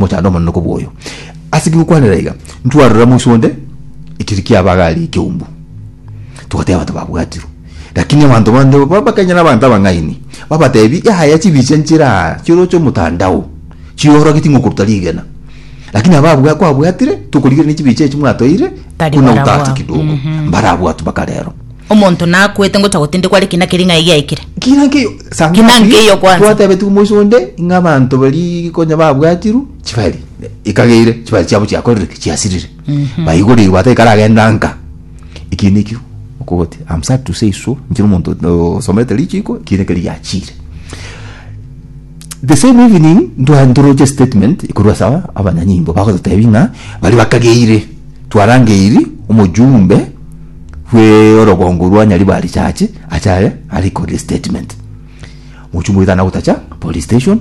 mochando omonene kobwoyo. Ase kigokwanera iga, ntwarora moiso onde ekeri kiaba agare ekeumbu, togateba abanto babwatirwe. Lakini abanto bande babakanye nabanto abang'aini, babatebi, Yaya chibicha nchera chiroche omotandao, chiorogeti ng'a okoruta rigena. Lakini ababwa kwabwatire, tokorigereria chibicha echi mwatoire, Tari buna barabwao. gotata kidogo. Mbarabwatwe mpaka rero. Omonto nakwete ngocha gotindekwa are ki naki ring'ai giaikire? Ki naki eyo? Sang'asi, Ki naki eyo kwanza? Twatebetigwe moisa onde ng'a abanto baria konya babwatirwe chibari ikageire, chibari chiabo chiakorire ki? Chiasirire. Baigoreirwe ata ikaragenda nka. Ekiya nekio okogoti. I'm sad to say so, inche nomonto o- osomete richiiko, ekiya nekio riachire. The same evening, ntwa- ntoroche statement ekorwa ase aba- abanyanyimbo bagototebia ng'a baria bakageire twarangeiri omojumbe bweorogongo rwa Nyaribari church ache aye arekodire statement mochungu oito na gotacha police station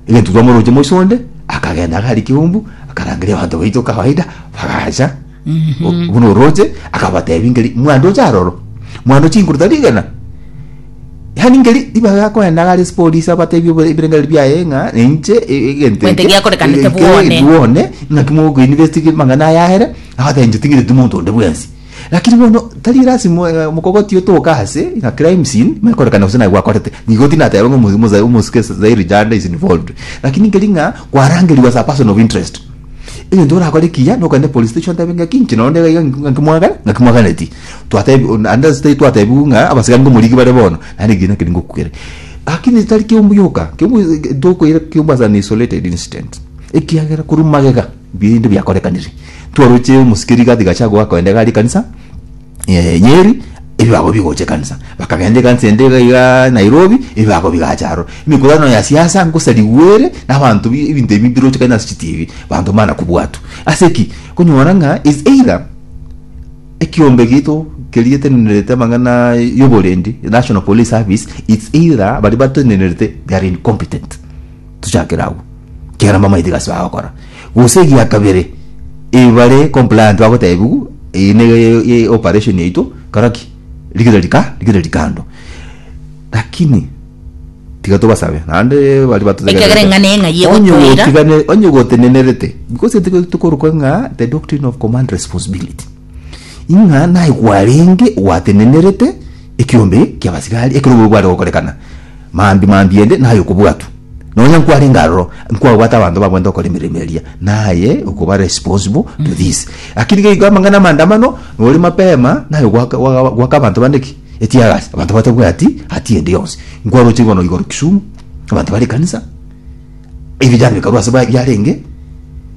egento twamoroche moiso onde akagenda agari kiumbu akarangeria abanto baito kawaida bagacha O- buna oroche akabatebi ngeri mwana oche aroro mwana oche inguru tari igena yani ngeri ibaga akoenda agare ase polisi abatebi obo- ebirengereri biaye ng'a inche e- egento Egento eke, giakorekanete eke bwone. bwone naki mogoinvestige mang'ana aya aere Nabateebia, Ting'iteti monto onde bwensi. Lakini bono tari lasima omokogoti otoke aase ng'a crime scene manye korekana gose naye gwakorete. Nigo tinateeba ng'a omo- omosa- omosike Zaire Janda is involved. Lakini nkeri ng'a kwarangerigwe as a person of interest. Egento orakore ekiya nokende police station otebe ng'aki inche nonye onde iga iga ng'a- ng'aki mwagana ng'aki mwaganeti. Twatebia on- naende ase tari twatebiwu ng'a abasikani nkomorigi bare bono naende ekiina keria ngokogere. Lakini tari kiombe yoka, kiombe tokoira kiombe as an isolated incident ekiagera korwa magega. Binde biakorekanire, twaroche omosikeri gati gacha goa kogenda igare ekanisa eh Nyeri, ebibago bigocha ekanisa, bakagenda ekanisa ende iga iga Nairobi, ebibago bigacha aro. Emekutano ya siasa ngosa rigwere na abanto bi ebinto ebi mbiroche kare nase chi TV, abanto mbana kobwatwa. Ase ki? Konyora ng'a is either ekiombe gito keri getenenerete amang'ana yoborendi, National Police Service, it's either baria batenenerete they are incompetent. tochakere agwo ekiagera mbamaete egasi bagokora gose egia kabere ebe bare compliant bagotebiwa eye ne e- operation yaito kora ki rigire rika rigire rikando lakini tiga tobasabe naende baria batotegererete Ekiagera eng'ana eye ng'ai Onye egotoira. gotigane- onye gotenenerete because tokorokwa ng'a the doctrine of command responsibility Ing'a naye kwarenge gwatenenerete ekiombe ki'abasigari ekero obobe bware gokorekana, mambia mambia ende naye okobwatwa. Nonya nkwarenge aroro, nkwabwate abanto babwate gokora emeremo eria, naye okoba responsible to this. Lakini iga iga amang'ana 'amaandamano, nore mapema naye gwaka gwa- gwaka abanto bande ki? Eteargas. Abanto batabwati hatia ende yonsi. Nkwaroche bono igoro Kisumu, abanto bare ekanisa, ebijana bikarwa ase ba- biarenge,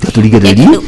Tatorigereria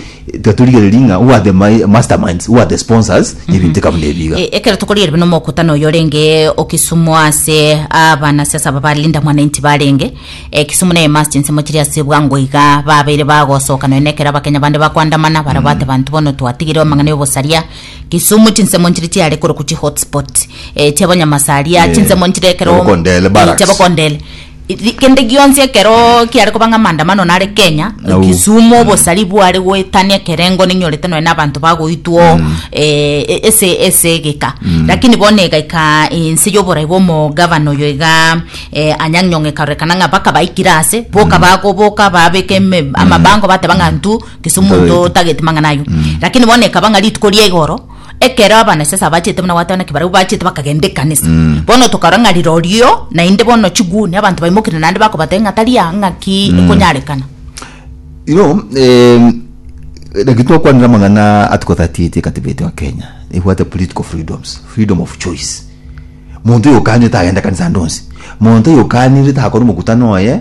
tatorigereria ng'a who are the mi- masterminds who are the sponsors y'ebinto eka buna ebiga E- ekero tokorigere buna omokutano oyo orenge o kisumu ase abanasiasa aba ba linda mwananchi barenge e, kisumu naye must nsemo chiri ase bwango iga babeire bagosoka nonya ekero abakenya bande bakoandamana barabwo ate banto bono twatigire amang'ana ya obosaria kisumu chinsemo nchiri chiare korokwa chi hotspot e, chiabanyamasaria Yes. chinsemo nchire ekero Chiabokondele, Eh, barracks. chiabokondele Ri- Kende gionsi ekero kiare koba ng'a maandamano nare Kenya Au. Kisumu obosari bware goetania ekerengo ninyorete nonya na abanto bagoitwa oo eh, e- ese ese egeka lakini bono egaika ense y'oborai bwa omogavana oyo iga eh, Anyang' Nyong'o ekarorekana ng'a baka baikire ase boka bagoboka babeka eme- amabango bateba ng'a ntu Kisumu Ntoe. nto tageti mang'ana ayio lakini bono ekaba ng'a rituko ria igoro Ekero abana sasa abachete buna gwatana ki barabwo bachete bakagenda ekanisa. Mm. Bono tokarora ng'a rirorio naende bono chiguni abanto baimokire naende bakobatebia ng'a tari aa ng'a ki mm. ekonyarekana. You know, eh, like twakwanire amang'ana article 38 ekatibete wa Kenya ebwate political freedoms, freedom of choice. Muntu oyo okanire tagenda kanisa ndonsi. Muntu oyo okanire takora omokutano oye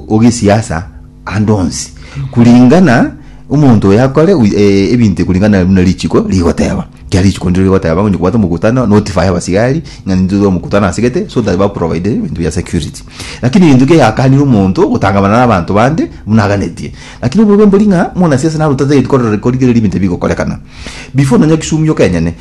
ogesiasa ande onsi kuringana omonto oyo akore wi- eh, ebinto kuringana buna richiko rigoteba ekiagera richiko ndiro rigoteba onye kobwate omokutano notify abasigari ng'a nintwe omokutano asegete so that baprovide ebinto bia security lakini egento ekiagera yakanire omonto gotangamana na abanto bande buna aganetie lakini obobe mbori ng'a muna siasa naro tatagete korora korigereria ebinto ebigokorekana before nonya kisumu yoke enyene.